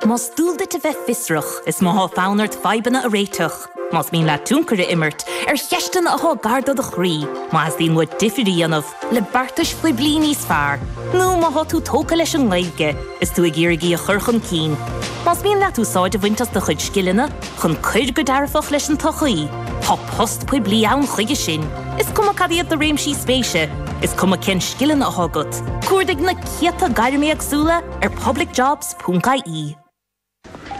Más dual duit a bheith fiosrach, is má tá fonn ort fadhbanna a réiteach. Más mian leat tionchar a imirt ar cheisteanna atá gar do do chroí, má theastaíonn uait difear a dhéanamh le beartais phoiblí níos fearr, nó má tá tú tógtha leis an nGaeilge is tú ag iarraidh í a chur chun cinn, más mian leat úsáid a bhaint as do chuid scileanna chun cur go dearfach leis an tsochaí, tá post poiblí ann chuige sin, is cuma cad iad do réimsí spéise, is cuma cén scileanna atá agat. Cuardaigh na. céadta gairm éagsúla ar publicjobs.ie.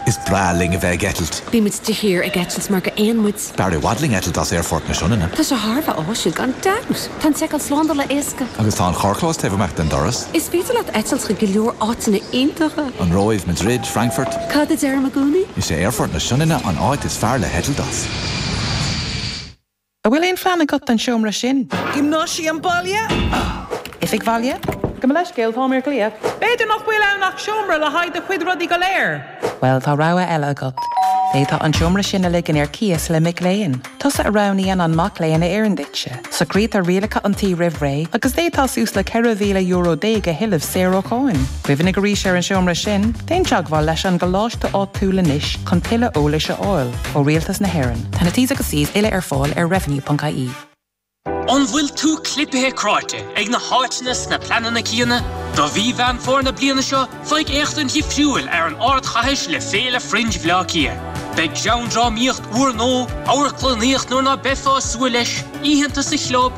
Is breá linn a bheith ag eitilt. Bíonn muid de shíor ag eitilt mar gur éin muid. B'fhearr i bhfad linn eitilt as Aerfort na Sionainne. Tá sé thar a bheith áisiúil gan dabht! Tá an tseiceáil slándála éasca. Agus tá an carrchlós taobh amach den doras. Is féidir leat eitilt chuig go leor áiteanna iontacha. An Róimh, Madrid, Frankfurt. Cad a deirim i gcónaí? Is é Aerfort na Sionainne an áit is fearr le heitilt as. An bhfuil aon phlean agat don seomra sin? Giomnáisiam baile? Oifig bhaile? Gabh mo leithscéal, táim ar ghlaoch. B'fhéidir nach bhfuil ann ach seomra le haghaidh do chuid rudaí go léir? Bhuel, tá rogha eile agat. D'fhéadfá an seomra sin a ligean ar cíos le mic léinn. Tusa a roghnaíonn an mac léinn a oireann duitse. Socraítear rialacha an tí roimh ré, agus d'fhéadfá suas le €14,000 a thuilleamh saor ó cháin. Cuimhnigh arís ar an seomra sin, déan teagmháil leis an gcoláiste áitiúil anois chun tuilleadh eolais a fháil ó Rialtas na hÉireann. Tá na T's agus C's uile ar fáil ar revenue.ie. An bhfuil tú clipthe cráite ag na háiteanna is na pleananna céanna? Do mhí Mheán Fómhair na bliana seo, faigh éachtaint dhifriúil ar an ardchathair le Féile Fringe Bhleá Cliath. Beidh greann, drámaíocht úrnua, amharclannaíocht nuair ná beifeá ag súil leis, oícheanta sa chlub,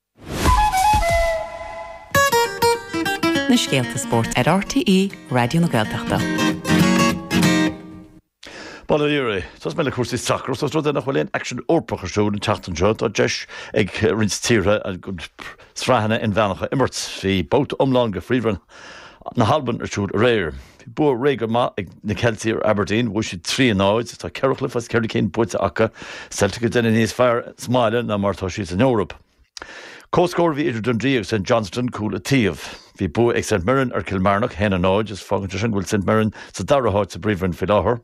Na scéalta spóirt ar RTÉ Raidió na Gaeltachta. Bail ó Dhia oraibh, tosóidh mé le cúrsaí sacair is ós rud é nach bhfuil aon aicsean Eorpach ar siúl an tseachtain seo. Tá deis ag roinnt tíortha sraitheanna inmheánacha a imirt. Bhí babhta iomlán de Phríomhroinn na hAlban ar siúl aréir. Bhí bua réidh go maith ag na Ceiltigh ar Aberdeen, bhuaigh siad 3 in 0. Tá ceithre chluiche as ceithre cinn buaite acu. Celtic ag déanamh níos fearr sa mbaile ná mar atá siad san Eoraip. Comhscór a bhí idir Dundee agus St Johnstone, cúl an taobh. Bhí bua ag St Mirren ar Kilmarnock, 1 in 0, agus fágann sé sin go bhfuil St Mirren sa dara háit sa bPríomhroinn faoi láthair.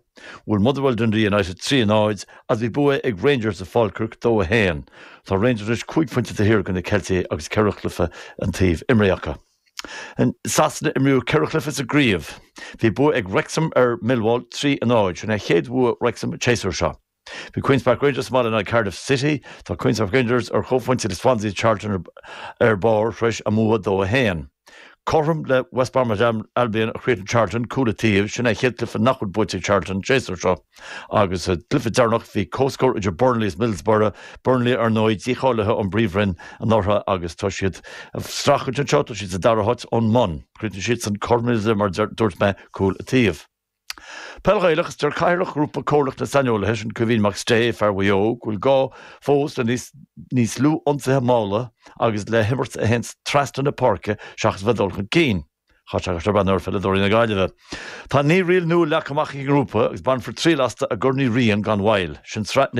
Bhuail Motherwell Dundee United 3 in 0, agus bhí bua ag Rangers i Falkirk, 2 1. Tá Rangers anois cúig phointe taobh thiar de na Ceiltigh agus ceithre chluiche an taobh imeartha acu. In Sasana imríodh ceithre chluiche sa gcraobh. Bhí bua ag Wrexham ar Millwall trí a náid. Sin é chéad bhua Wrexham an tséasúir seo. Bhí Queens Park Rangers sa mbaile in aghaidh Cardiff City. Tá Queens Park Rangers ar chomhphointe le Swansea Charlton ar barr tar éis a mbua dó a haon. Cothrom le West Bromwich Albion a chríochnaigh Charlton, cúl an taobh. Sin é chéad chluiche nach bhfuil buaite ag Charlton an séasúr seo. Agus sa gcluiche deireanach, bhí comhscór idir Burnley is Middlesbrough, Burnley ar ndóigh dícháilithe ón bPríomhroinn anuraidh agus tá siad ag strachailt anseo, tá siad sa dara háit ón mbun. Chríochnaigh siadsan cothrom mar a dúirt mé, cúl an taobh. Peil Ghaelach, Deir Cathaoirleach Ghrúpa Comhairleach na Saineolaithe, sin Kevin McStay, fear Mhaigh Eo, go bhfuil gá fós le níos níos lú ionsaithe malla agus le himirt a théanns trasna na páirce seachas a bheith ag dul chun cinn. Chaith sé sé bhean ar pheileadóirí na Gaillimhe. Tá naoi riail nua leagtha amach ag an ngrúpa agus bainfear triail astu i gCorn Uí Riain gan mhoill. Sin sraith na.